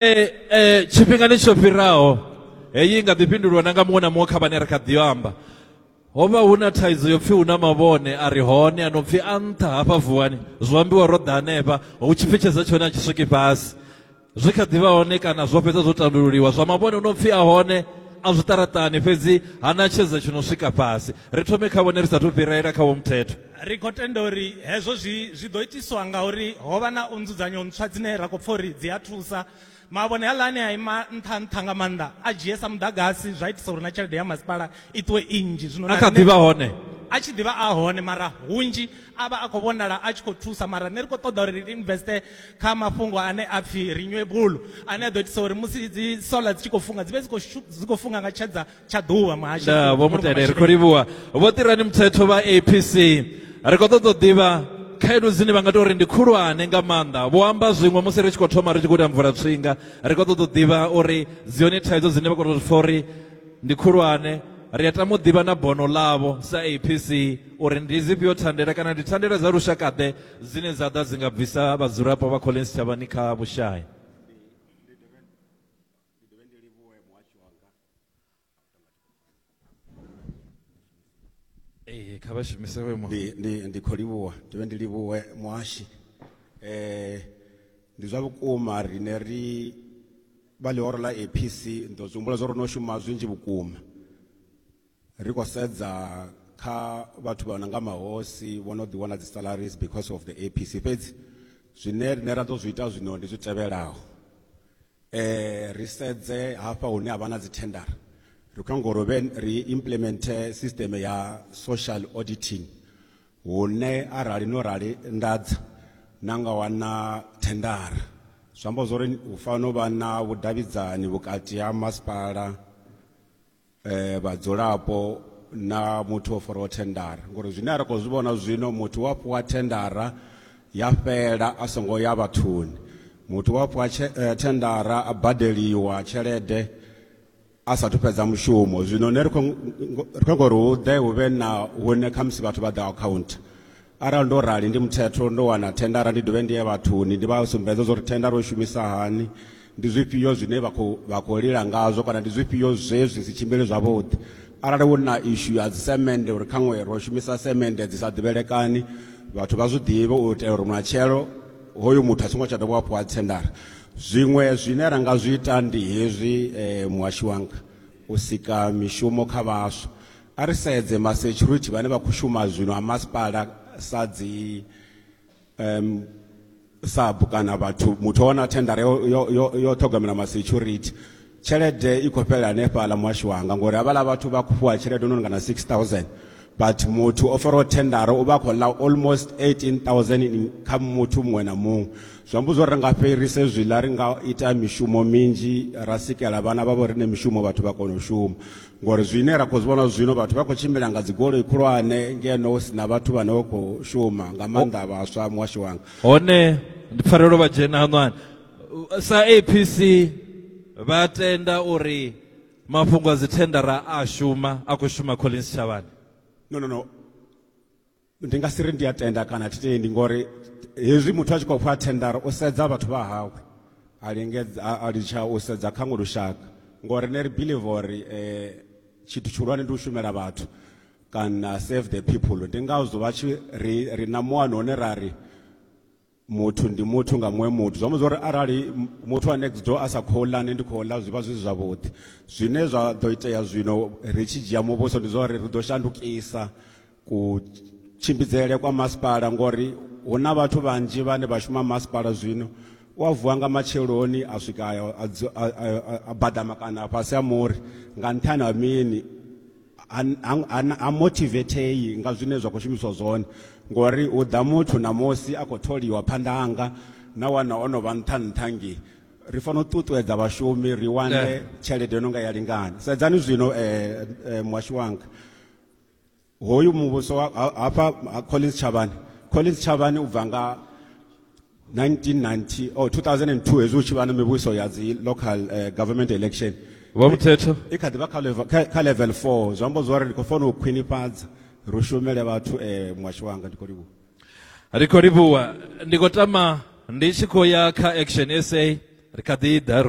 eh, eh, tshifhingani tsho fhiraho heyi i nga ḓi fhindulwa na nga muṅwe na muṅwe kha vhane ri kha ḓi amba ho vha hu na thaidzo yo pfhi hu na mavhone a re hone a no pfhi a nṱha hafha vuwani zwo ambiwa ro ḓa hanefha hu tshi pfetshedza tshone a tshi swiki fhasi zwi kha ḓivha hone kana zwo fhedza zwo tandululiwa zwa mavhone hu no pfhi a hone a zwiṱaraṱani fhedzi ha na tshedza tshi no swika fhasi ri thome kha vhone ri sathu fhirela kha vho muthetho ri khou tenda uri hezwo zwi zwi ḓo itiswa nga uri ho vha na u nzudzanyo ntswa dzine ra khou pfa uri dzi a thusa mavhone haḽa ane a ima nṱha nṱha nga maanḓa a dzhie sa muḓagasi zwa itisa uri na tshelede ya masipala i ṱuwe i nnzhi zwino a kha ḓi vha hone a tshi ḓivha a hone mara hunzhi a vha a khou vhonala a tshi khou thusa mara nṋe ri khou ṱoḓa uri ri investe kha mafhungo ane a pfhi renewable ane a ḓo itisa uri musi dzi solar dzi tshi khou funga dzi vhe dzi khou funga nga tshedza tsha ḓuvha muhashi nda vho mutendere ri khou livhuwa vho ṱirani muthetho vha apc ri khou ṱoḓa u ḓivha khaedu dzine vha nga tou ri ndi khulwane nga maanḓa vho amba zwiṅwe musi ri tshi khou thoma ri tshi khou ita mvula tswinga ri khou ṱoḓa u ḓivha uri dzi hone thaidzo dzine vha khou tou pfa uri ndi khulwane ri a tama u ḓivha na bono ḽavho sa apc uri ndi dzifhio thandela kana ndi thandela dza lushakaḓe dzine dza ḓa dzi nga bvisa vhadzulapo vha kholeni sitshavhani kha vhushai ee kha vha shumise hoyo ndi muhasho ndi ndi khou livhuwa ndi vhe ndi livhuwe muhashi eh ndi zwa vhukuma rine ri vha ḽihoro ḽa APC ndo zwi humbula zwo ri no shuma zwinzhi vhukuma ri khou sedza kha vhathu vha no nga mahosi vho no ḓi wana dzi salaries because of the APC fhedzi zwine rine ra ḓo zwi ita zwino ndi zwi tevhelaho eh ri sedze hafha hune ha vha na dzi tender ri khou nyanga uri ri implement system ya social auditing hune arali no rali ndadza na nga wana thendara zwi amba zwori hu fanela u vha na vhudavhidzani vhukati ha masipala eh, vhadzulapo na muthu o faraho thendara ngori zwine a ri khou zwi vhona zwino muthu wa fhiwa thendara ya fhela a songo ya vhathuni muthu wa fhiwa eh, thendara a badeliwa tshelede a sathu fhedza mushumo zwino ne ri khou ngori hu ḓe hu vhe na hune khamusi vhathu vha ḓa akhauntha arali ndo rali ndi muthetho ndo wana thendara ndi dovhe ndi ye vhathuni ndi vha sumbedza zwa uri thendara u shumisa hani ndi zwifhio zwine vha khou vha khou lila ngazwo kana ndi zwifhio zwe zwi si tshimbili zwavhuḓi arali hu na ishu ya dzisemende uri khaṅwe ro shumisa semende dzi sa ḓivhelekani vhathu vha zwi ḓivhe u itela uri matshelo hoyu muthu a songo tsha dovha hafhu a tshendara zwiṅwe zwine ra nga zwi ita ndi hezwi um muhashi wanga u sika mishumo kha vhaswa A ri sedze ma security vhane vha khou shuma zwino ha masipala sa dzi um sub kana vhathu muthu o wana thendara yo, yo, yo, yo ṱhogomela ma security tshelede i khou fhelela hanefhaḽa muhasho wanga ngori havhaḽa vhathu vha khou fhiwa tshelede no nga na 6000 but muthu o faraho thendara u vha a khou ḽa almost 18000 kha muthu muṅwe na muṅwe zwi amba zwo ri nga fhirise zwiḽa ri nga ita mishumo minzhi ra sikela vhana vha vho riṋe mishumo vhathu vha kona u shuma ngori zwine ra khou zwi vhona zwino vhathu vha khou tshimbila nga dzigoloi khulwane ngeno hu si na vhathu vhane vha khou shuma nga maanḓa vhaswa muhasho wanga hone ndi pfarelo vha dzhena hanwani sa apc vha tenda uri mafhungo a dzithendara a shuma a khou shuma collins tshavhani no no no ndi nga si ri ndi a tenda kana thi tendi ngori hezwi muthu a tshi khou fha thendara u sedza vhathu vha hawe a lingedza a- a litsha u sedza kha ngo lushaka ngori ne ri believe uri eh, tshithu tshihulwane ndi u shumela vhathu kana save the people ndi ngazwo vha tshi ri ri na muano une ra ri muthu ndi muthu nga muṅwe muthu zwi amba zwori arali muthu wa next door a sa khou ḽa nṋe ndi khou ḽa zwi vha zwi zwavhuḓi zwine zwa ḓo itea zwino ri tshi dzhia muvhuso ndi zwa uri ri ḓo shandukisa kutshimbidzele kwa masipala ngori hu na vhathu vhanzhi vhane vha shuma masipala zwino u a vuwa nga matsheloni a swika a badama kana fhasi ha muri nga nṱhani ha mini ha motivetei nga zwine zwa khou shumiswa zwone ngori hu ḓa muthu ṋamusi a khou tholiwa phanḓa hanga na wana o no vha nṱha nṱha nge ri fanela u ṱuṱuwedza vhashumi ri wane tshelede yo no nga ya lingana sedzani zwino um muhasho wanga hoyu muvhuso hafha collins tshavhani collins tshavhani u bva nga 1990 or 2002 hezwi hu tshi vha na mivhuso ya dzi local uh, government election vha muthetho i kha ḓi vha kha level- kha- kha level 4 zwi amba zwori ndi khou fanela u khwinifhadza ri shumele vhathu um muhasho wanga ndi khou livhuwa ri khou livhuwa ndi khou tama ndi tshi khou ya kha action sa ri kha ḓi ḓa ro